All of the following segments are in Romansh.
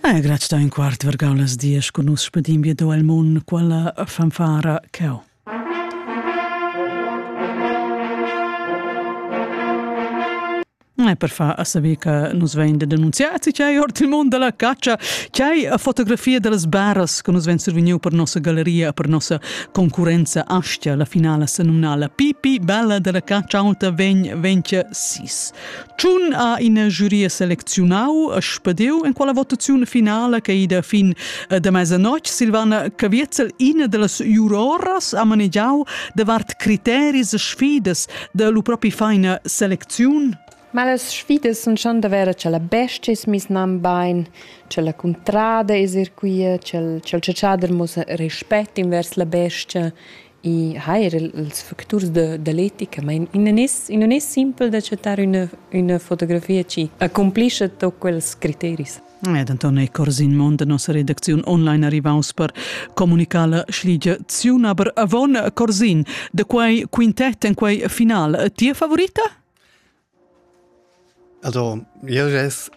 Ei grazia da in quart vergau las dies cun nus spedim via do el mun quella fanfara cau. E per far a saber che nus vein de denunziati c'è ord il mondo della caccia, c'è fotografia delle baras che nus vein survegniu per nossa galleria, per nossa concurenza Astia, la finala senumnala Pipi Bella della caccia alta vegn 26. Tschun ha ina giuria selecziunau e spediu en quella votaziun finala che ida fin eh, da mesa notg Silvana Caviezel ina dallas juroras ha manegiau davart criteris e sfidas da lu propi feina selecziun. Ma las sfidas sun schon da vera che la bestia es mis nan bain, che la cuntrada es er quia, che il ciaciader muss respett invers la bestia I ha er ils facturs da, da l'etica, ma in, in, es, in non es simpel d'acceptar üna, üna fotografia chi accomplischa tot quels criteris. Ed Anton è corsi in mond da nossa redacziun online arrivaus per comunicar la schligia ziun, aber avon Corsin, de quei quintet en quei final, tia favorita? Also jeu gess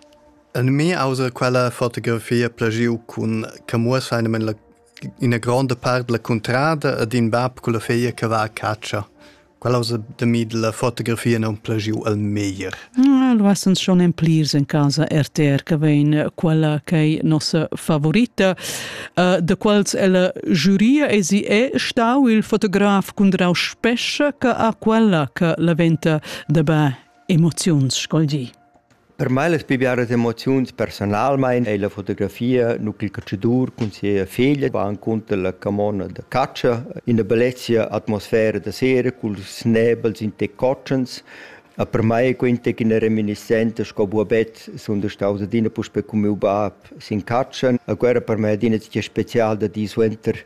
en mi auter quella fotografia plagiu cun che muossa einamen la ina gronda part dalla cuntrada ed in bab culla feglia che va a catscha. Quella auza da mi dalla fotografia non plagiu al meglier. Lu essens schon en plirs en casa RTR che vegn quella ch'ei nossa favorita. Uh, da quels ella giuria e si è stau il fotograf Cundrau Spescha che ha quella che la venta Dabä emoziuns scolgi. Per mai las pli biaras emoziuns personalmein ei la fotografia, nu ch'il calcidur cun sia feglia va encunter la camona da catscha, ina bellezia atmosfera da sera cul snebels in te cotschens. A per mai quenta che una reminiscenza sco buobet sunt staus adina puspe con miu bab sin catscha. A guerra per me adina tge special da di suenter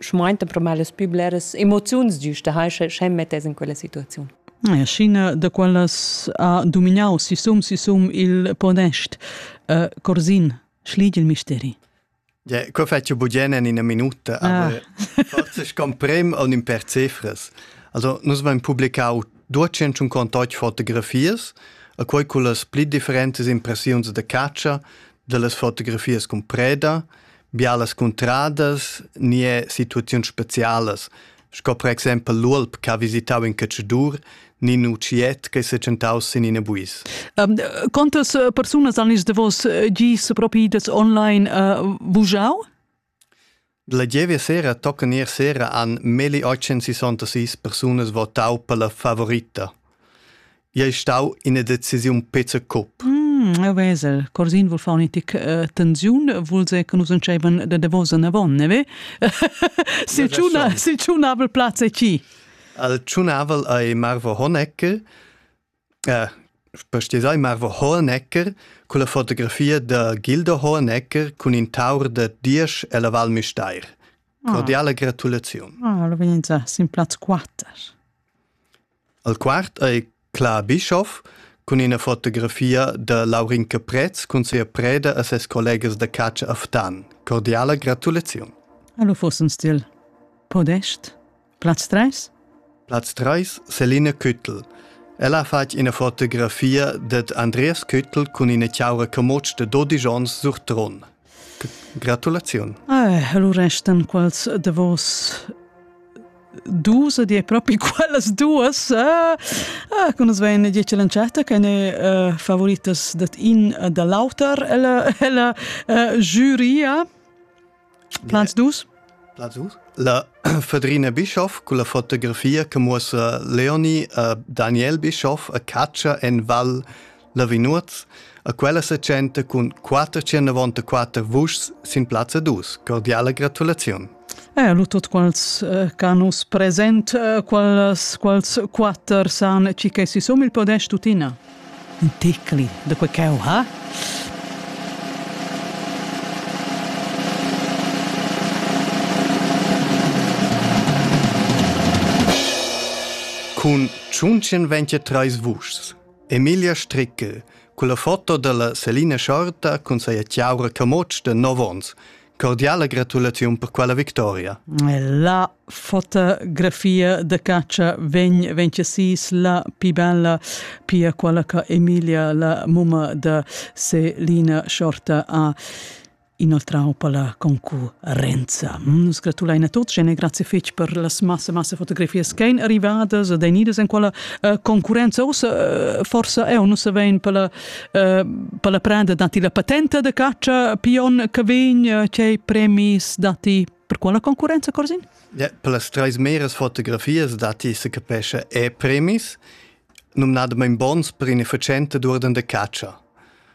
schmainta pro mal las pü bleras emoziuns giusta hai sche mettes in quella situaziun. China da quallas ha dominau sisum sisum il podest uh, Corsin schlieg il misteri. Ja, co faccio bugen in una minuta, ah. aber forse scomprem on in per cifres. Also nus vain publicau 200 contot fotografias, a quei con las pli differentes impressiuns de caccia, de las fotografias con preda, bialas cuntradas ni è situaziuns specialas, sco per exempel l'uolp che ha visitau in caccidur ni in utschiet che è tschentau sin in buis. Um, quantas eh, persunas han is davos eh, gis propi das online uh, vujau? La gievia sera tocca ier sera an meli 866 persunas votau per la favorita. ei stau ina decisiun pezza cup. Mm, Vesel, Corsin vul far un'etica uh, tensiun, vul se che nus entscheivan da davos en avon, ne ve? Sil tschuna, sil tschunavel plaz è chi? Al tschunavel ei Marvo Honecker, äh, sai Marvo Honecker con la fotografia da Gilda Honecker con in taur da diesch e la Val Misteir. Ah. Cordiale gratulazione. Ah, lo veniva sin plaz 4. Al quart ei Cla Bischoff cun ina fotografia da Laurin Caprez cun sia preda e ses collegas da catscha a Ftan. Cordiala gratulaziun. Hallo Fossenstil. Podest, Platz 3? Platz 3, Selina Küttel. Ella ha fatg ina fotografia dad Andreas Küttel cun ina chaura camotsch de 12 onns sur Tron. Gratulaziun. Eh, allura restan quals davos dus ed è proprio quellas duas ah, ah, che nus vein dieci l'entschatta che ne uh, favoritas dat in da l'auter ella, ella uh, giuria Plans dus? Plans dus? La Fedrina Bischoff con la fotografia che muossa Leonie e Daniel Bischoff a caccia en Val Lavinuoz a quella setschenta cun quatter tschernavontaquatter vuschs sin plazza dus. Cordiala gratulaziun. Eh, lu tot quals eh, canus present, eh, quals, quals quatter san ci che si som il podest tutina. Un ticli da quei cheu ha? Cun 123 vuschs Emilia Strickel. Culla foto dalla Selina Schorta cun seia tiaura camotsch de 9 ons. Cordiala gratulaziun per quella victoria. La fotografia de caccia vegn vencesis la più bella, pia quella che Emilia, la mumma de Selina Schorta, ha inoltrau per la concurenza. Nus gratulein a tuts e grazie fetg per las massa massa fotografias che ein arrivadas ed ein idas en quella uh, concurenza. Ussa uh, forsa eu nus savein per la, uh, per la prenda dati la patenta de caccia pion che vegn, uh, cei premis dati per quella concurenza, Corsin? Ja, per las treis meras fotografias dati se capesce e premis, numnadamein bons per inefficiente d'urden de caccia.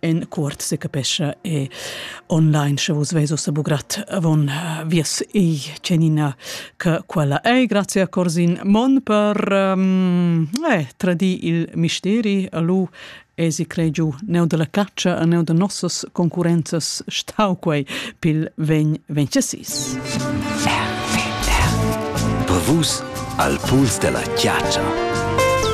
en cuort se capescha e online sche vos veso se bugrat avon eh, vias ei cenina che quella ei grazie a Corsin Mon per um, eh, tradi il misteri a lu e si crei giu neu della caccia a neu de nossos concurrenzas stau quei pil ven vencesis. Bevus al puls della chiaccia.